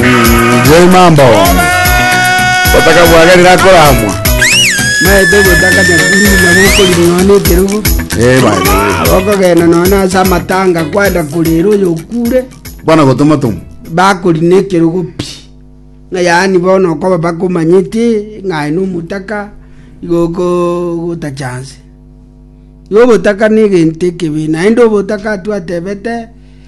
Njei mambo. Gotaka bwagerire akoramwa. maete gotaka nyakuri nabo okorinoa nekerogo Eh bai. abokogenda noone ase amatanga kwenda korera oyo okure Bwana gotoma tomu. bakori nekerogo pi ng'a yaani bono okoba bakomanyete ng'aye nomotaka igo okogota chance igo obotaka na egento ekebe naende obotaka twatebete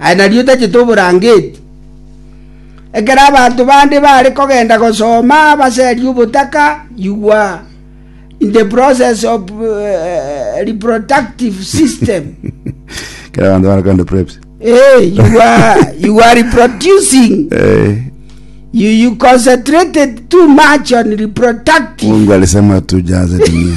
aye nario otachete oborangeti. Ekero abanto bande baare kogenda gosoma baseria obotaka, igwa the process of reproductive system. Kera abanto baare kogenda preps. Eh, you are you are reproducing. Eh, You you concentrated too much on reproductive. Mungu alisema tujaze dunia.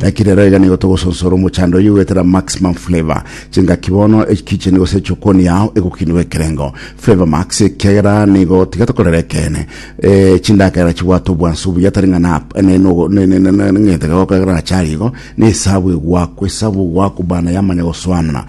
Naki rero iga nigo togosonsora omochando oyio goetera Maximum Flavor. Chingaki bono ekicheni gose echokoni yao egokinigwa ekerengo Flavor Max ekiagera nigo tiga tokorera ekeene. Eh, chindagera chibwate obwansu buya tari ng'a na ne no ne ne ne ne ng'ete gokorera achari igo ne esabu egwakwa esabu ogwakwa bana yamanya gosoanana.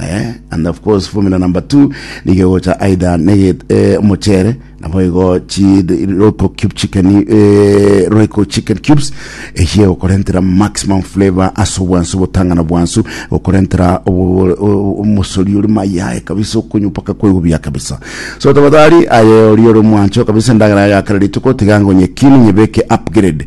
Eh, and of course formula number two nigo gocha aidha nege eh, omochere nabo igo chi roiko cube chicken eh, roiko chicken cubes eye okorentera maximum flavor ase obwansu botang'ana bwansu okorentera obo- o- omosori ori mayae kabisa okonywa mpaka kwegubiya kabisa so tafadhali aye ori ori mwancho kabisa endagera yagakara rituko tiga ngonye kini nyebeke upgrade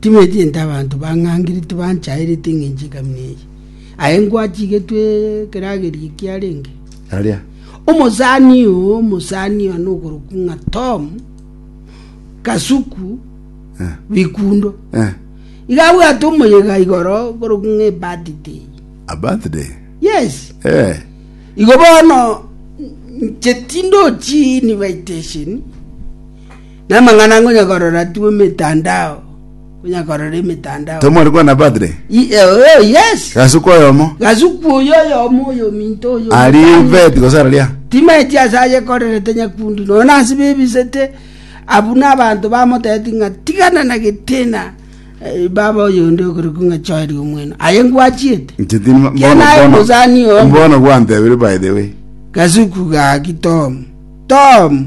Timetiente abanto bang'angire tibanchaereti engencho y'egami neye, aye ngwachigetwe ekeragerio ekiarenge. Aria. Omosani oo, omosani oo nokorokwa ng'a Tom Kasuku Eh. Bikundo. Eh. Iga abwate omoyega igoro korokwa ng'a ebirthday. A birthday. Yes. Eh. Igo bono nche tindochini baitesheni Namang'ana ngonya korora tu emetandao, ngonya korora emetandao. Tomwari kwana padre. I- eh, oh, yes. Gasuku oyomo. Gasuku oyo oyomo oyo minto oyo. Ari mutano. vet gose araria. timaeti ase ayekorerete nyakundi nona ase bebisete abu na abanto bamoteti ng'a tigana na getina eh, baba oyonde okorokwa ng'a choeri omwena aye ngwachiete Nchitini ma- Kia bono- naye bono- musani omo. bono gwantebire by the way. gasuku gaki tom tom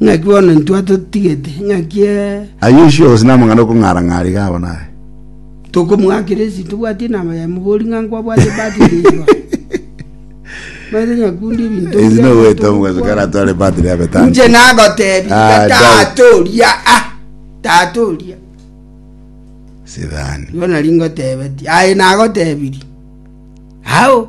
Naki bono intwe atotigete, naki ee. Ayio onsi onsi namang'ana okong'ara-ng'ara iga abo naye. Tokomoakera ense tobwati enama yaye, mobori ng'a nkwabwate ebati ere enchwa. Omanyete nyakunde ebinto Ase mbia nogoeta omonto omogaso ogokwa. kare atware batiri ya betani. Inche nagotebia Ah, iga Daudi. tata oria ah, tata oria. Sidhani. Igo nari ngotebetie, aye nagotebirie. Ao.